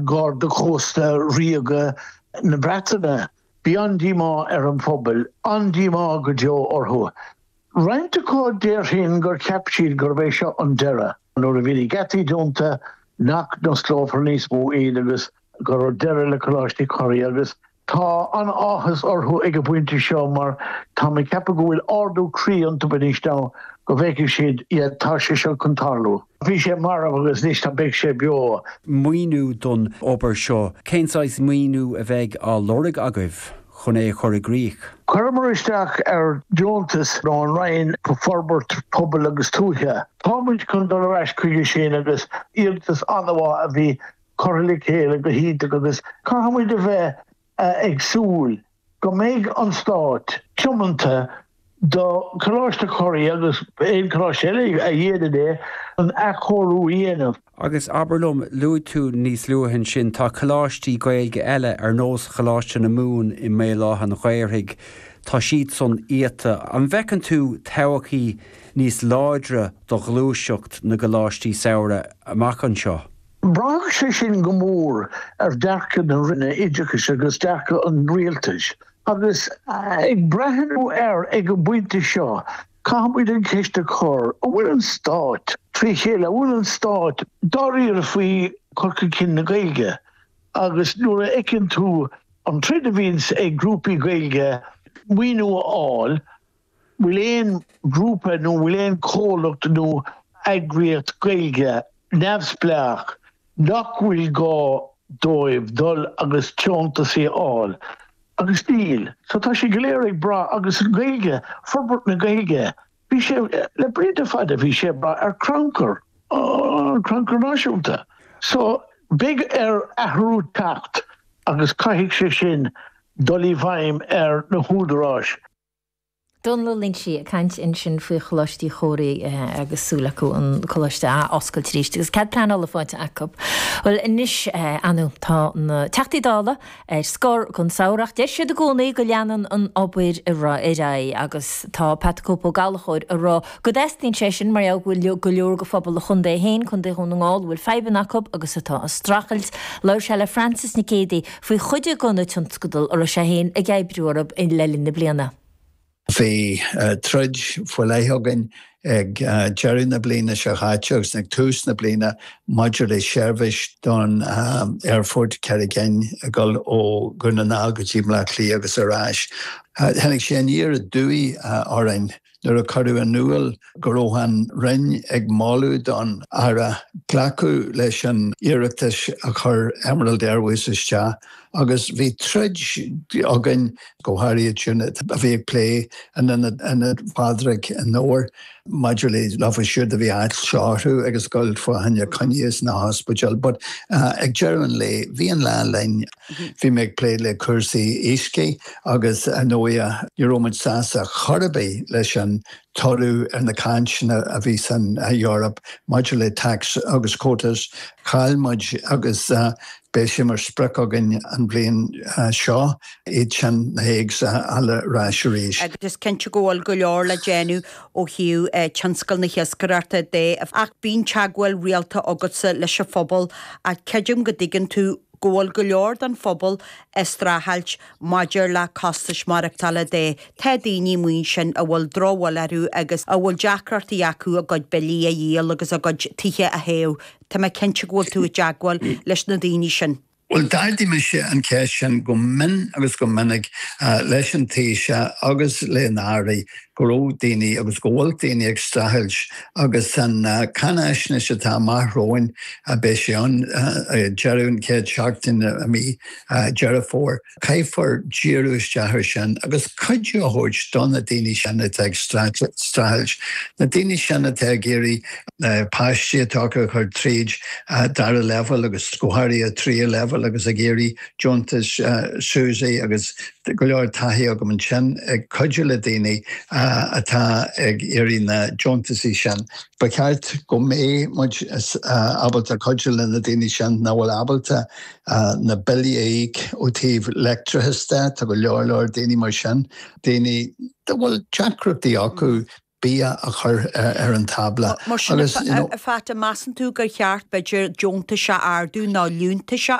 Gharda Chósta Ríoga na Breataine. Bhí an-díomá ar an phobail, an-díomá go deo orthu. Roinnt acu, déarfainn gur cheap siad gurb é seo an deireadh, nuair a bhí na geataí dúnta, nach n-osclófar níos mó iad agus go raibh deireadh le Coláiste Uí Chomhraí agus Tá an-áthas orthu ag an bpointe seo mar táim ag ceapadh go bhfuil ardú croí iontu anois now go bhfeicfidh siad iad, tá sé seo chun tarlú. Bhí sé marbh agus anois tá beidh sé beo. maoiniú don obair seo? Cén saghas maoiniú a bheidh á lorg agaibh chun é a chur i gcrích? Chuireamar isteach ar deontas ó An Roinn Forbairt Pobail agus Tuaithe. Tá muid chun dul ar ais chuige sin agus iarratas an-mhaith a bhí curtha le chéile go hiontach agus caithfidh muid a bheith ag súil go mbeidh an Stát tiomanta do Choláiste Uí Chomhraí agus aon choláiste eile a dhéanann é chun athchóiriú a dhéanamh. Agus abair liom, luaigh tú níos luaithe ansin, tá coláistí Gaeilge eile ar nós Choláiste na Mumhan i mBéal Átha an Ghaorthaidh, tá siadsan iata. An bhfeiceann tú todhchaí níos láidre do ghluaiseacht na gcoláistí samhraidh amach anseo? Braithfidh sé sin go mór ar dhearcadh na Roinne Oideachais agus dearcadh an Rialtais. Agus ag breathnú air ag an bpointe seo, caithfimid an cheist a chur, an bhfuil an Stát trí chéile, an bhfuil an Stát dáiríre faoi chur chun cinn na Gaeilge? Agus nuair a fheiceann tú an troid a bhíonns ag grúpaí Gaeilge maoiniú a fháil, bhfuil aon ghrúpa nó bhfuil aon chomhlacht nó eagraíocht Gaeilge neamhspleách nach bhfuil gá dóibh dul agus deontas a fháil? Agus níl. So tá sé go léir ag brath agus an Ghaeilge, forbairt na Gaeilge, bhí sé, le blianta fada bhí sé ag brath ar Crannchur, an Crannchur Náisiúnta. So beidh ar athrú teacht agus caithfidh sé sin dul i bhfeidhm ar na húdaráis. Domhnall Ó Loingsigh ag caint ansin faoi Choláiste Uí Chomhraí agus súil acu an coláiste a oscailt arís agus cead pleanála faighte acu. Bhuel anois Anu, tá na Teachtaí Dála ar scor don samhradh ach deir siad i gcónaí go leanann an obair ar aghaidh agus tá Pat the Cope Ó Gallchóir ag rá go dteastaíonn sé sin mar gheall go bhfuil go leor de phobal a chontae féin, Contae Dhún na nGall, a bhfuil fadhbanna acu agus atá ag streachailt. Labhair sé le Frances Nic Géadaigh. faoi chuid de na tionscadail a raibh sé féin ag oibriú orthu le linn na bliana. Bhí troid faoi leith againn ag deireadh na bliana seo caite agus ag tús na bliana maidir le seirbhís don aerfort, Carraig Fhinn ag dul ó Dhún na nGall go dtí Baile Átha Cliath agus ar ais. Tháinig sé aniar aduaidh orainn. nuair a cuireadh in iúl go raibh an Roinn ag moladh don Aire glacadh leis an iarratas a chuir Emerald Airways isteach agus bhí troid againn, go háirithe iad sin a bhí ag plé le Ionad Pádraig an Dobhair maidir leofa siúd a bhí á shárú agus ag gabháil fá choinne coinní sna hospidéil. But ag deireadh an lae bhí an lá linn. Bhí mé ag plé le cúrsaí iascaigh agus ar ndóigh ní raibh muid sásta chor ar bith leis an toradh ar na cainteanna a bhí san Eoraip maidir le TACs agus quotas. Chaill muid agus beidh sé mar sprioc againn an bhliain seo iad sin, na Hagues, a fháil ar ais arís. Ach is cinnte go bhfuil go leor le déanamh ó thaobh tionscal na hiascaireachta de ach bíonn teagmháil rialta agatsa leis an phobal ach creidim go dtuigeann tú go bhfuil go leor den phobal ag streachailt maidir le costais maireachtála de, tá daoine amuigh ansin a bhfuil drochbhail orthu agus a bhfuil deacrachtaí acu a gcuid billí a dhíol agus a gcuid tithe a théamh, tá mé cinnte go bhfuil tú i dteagmháil leis na daoine sin. Bhuel, d'ardaigh mise an cheist sin go mion agus go minic leis an Taoiseach agus le na hAirí go raibh daoine agus go bhfuil daoine ag streachailt agus san cáinfhaisnéis atá amach romhainn beidh sé ann ag deireadh an chéad seachtain i mí Dheireadh Fómhair, caithfear díriú isteach ar sin agus cuidiú a thabhairt do na daoine sin atá ag streachailt, na daoine sin atá ag iarraidh na páistí atá acu a chur tríd dara leibhéal agus go háirithe tríú leibhéal agus ag iarraidh. deontais SUSI agus go leor taithí agam ansin ag cuidiú le daoine atá ag iarraidh na deontaisí sin. Ba cheart go mbeidh muid ábalta cuidiú le na daoine sin nach bhfuil ábalta na billí a íoc ó taobh leictreachas de. Tá go leor leor daoine mar sin, daoine a bhfuil deacrachtaí acu bia a chur ar an tábla. Mar sin, a Phat, an measann tú gur cheart, b'fhéidir, deontais a ardú nó liúntais a.